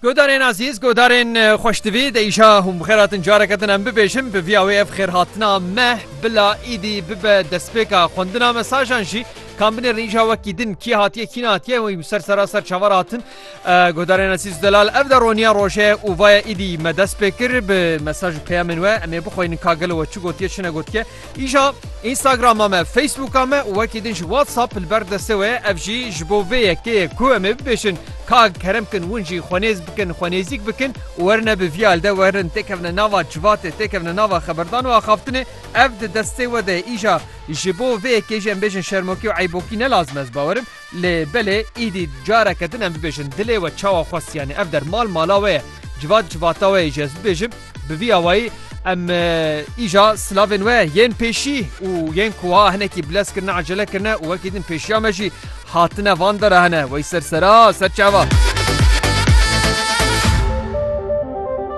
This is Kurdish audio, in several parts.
Godarên azîz, godarên xweştivî de îşa hûn bixêr hatin careke din em bibêjin bi vîya wê ev xêrhatina me bila îdî bibe destpêka xwendina mesajan jî kan binêrin îşa wekî din kî hatiye kî natiye wî ser seraser çavar hatin godarên azîz delal ev de roniya roje û vaya îdî me dest pê kir bi mesaj peyamên we em ê bixwînin kagel we çi gotiye çi negotiye Îja Instagrama me, Facebooka me û wekî din jî WhatsApp li ber destê we ye, ev jî ji bo vê yekê ye ku em ê bibêjin ka kerem bikin win jî xwe nêz bikin, xwe nêzîk bikin û werine bi vî alî de werin têkevine nava civatê, têkevine nava xeberdan û axaftinê. Ev di destê we de ye. Îja ji bo vê yekê jî em bêjin şermokî û eybokî ne lazim e, ez bawer im Lê belê îdî careke din em bibêjin dilê we çawa xwest yanî ev der mal mala we ye civat civata we ye jî ez bibêjim bi vî awayî em îja silavên we yên pêşî û yên ku wiha hinekî bilez kirine ecele kirine û wekî din pêşiya me jî hatine van dera hene wey ser sera ser çava.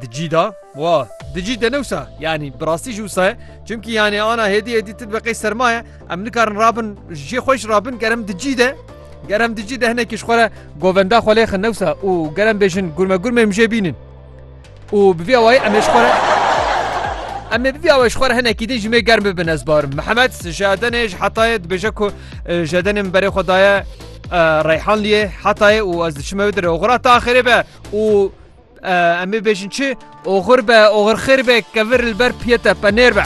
Di cî de wa di cî de newsa yanî bi rastî ji wisa ye çimkî yanê ana hêdî hêdî ti dibe qey serma ye em nikarin rabin jê xweş rabin gerem di cî de gerem di cî de hinekî ji xwe re govenda xwe lêxin newsa û gerem bêjin gurme gurmê min jê bînin û bi vî awayî em ê ji xwe re em ê bivî awe ji xwe re hinekî din ji mê germ bibin ez barim mihemed ji edenê ji hetayê dibêje ku ji edenê min berê xwe daye reyhanliyê hetayê û ez diçime dir oxira te axirê be û Em ê bêjin çi? Oxir be, oxir xêr be, kevir li ber piye te, penêr be.